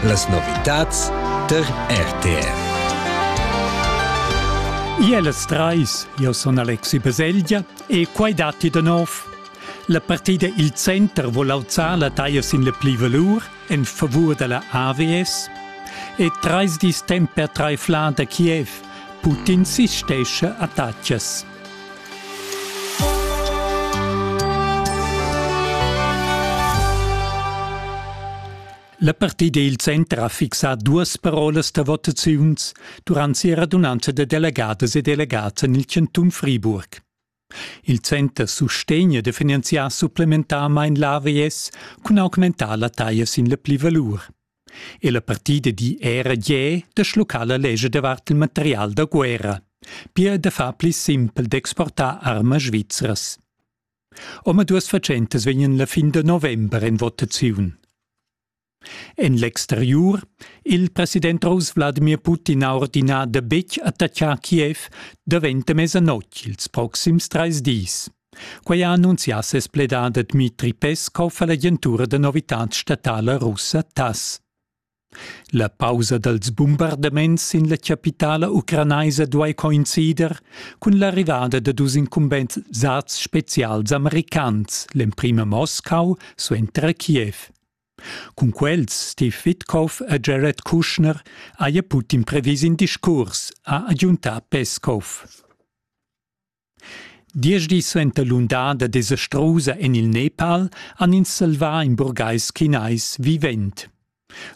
Las novitads tar RTR. Io las trais, io sun Alexi Baselgia e quai datti da nov. La partida Il Center vul auzar la taglia sin la plivalur en favur da la AWS e trais dis temp per traiflar da Kiev. Putin sistescha attacas. La partida il center ha fixà duas parolas da votaziuns durant sia radunanza da delegadas e delegads en il chantun Friburg. Il center sustegna da finanziar supplementarmain l'AVS cun augmentar la taglia sin la plivalur. e la partida di era gie da schluccar la lescha davart il material da guerra, pia da far pli simpel d'exportar armas svizras. Omaduas fatschentas vegnan la fin da november en votaziun. En l'exteriur il president russ Wladimir Putin ha ordinà da betg attaccar Kiev davent a mesanotg ils proxims trais dis. Quei ha annunzià ses pledader Dmitri Peskov all'agentura da novitads statala russa TASS. La pausa dals bombardaments sin la chapitala ucranaisa duai coincider cun l'arrivada da dus incumbensats spezials americans, l'emprima Moscau suenter Kiev. Cun quels Steve Witkoff e Jared Kushner haja Putin previs in discurs, ha agiuntà Peskov. Diesch dis suenter l'undada desastrusa en il Nepal han ins salvà in burgais chinais vivent.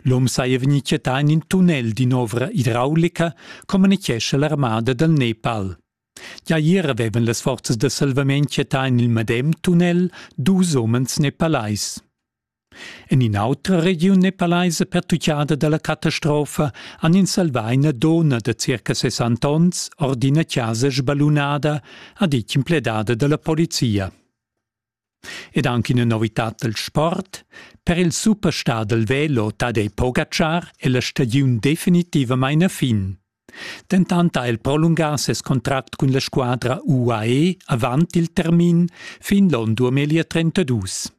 L'um saja vegnì chattà en in tunnel d'in'ovra idraulica, communitgescha l'armada dal Nepal. Gia ier avevan las forzas da salvament chattà en il medem tunnel dus umens nepalais. En in'autra regiun e palaisa pertuccada dalla catastrofa han ins salvà ina donna da circa 60 onns ord ina chasa sballunada, ha ditg in pledada dalla polizia. Ed anche una novità dal sport. Per il superstar del velo Tadej Pogacar è la stagiun definitivamente a fin. Dentant ha el prolungà ses contract cun la squadra UAE avant il termin fin l'on 2032.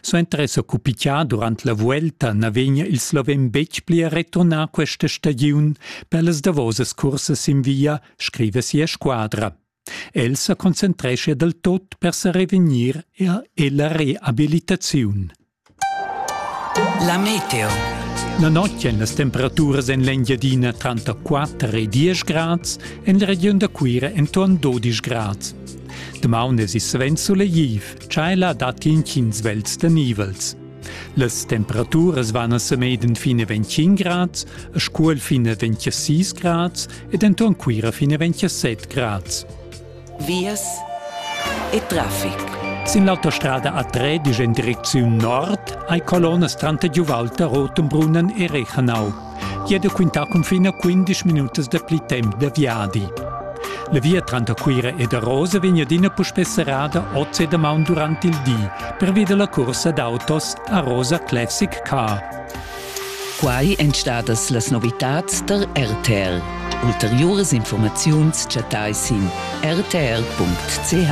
Suenter esser cupichà durant la vuelta na vegn il sloven betg pli a returnar questa stagiun per las davosas cursas sin via, scriva sia squadra. El sa concentrescha dal tot per sa revegnir er ella reabilitaziun. La meteo. La notg èn las temperaturas en l'Engiadina tranter 4 e 10 grads, en la regiun da Cuira enturn 12 grads. Damaun es il svent sulegliv. Tscheila dat inchins vels da nivels. Las temperaturas van a Semeden fine 25 grads, a Scuol fine 26 grads ed enton Cuira fine 27 grads. Vias e traffic. Sin l'autostrada A3 in direcziun nord hai colonnas tranter Giuvalta, Rotenbrunnen e Rechanau. Chi ha da quintà cun fin a 15 minutas da pli temp da viadi. La via tranter Cuira ed Arosa vegn adina puspè serrada oz e damaun durant il di, pervia da la cursa d'autos Arosa Classic Car. Quai èn stadas las novitads der RTL. Ulteriuras informaziuns chattai sin rtl.ch.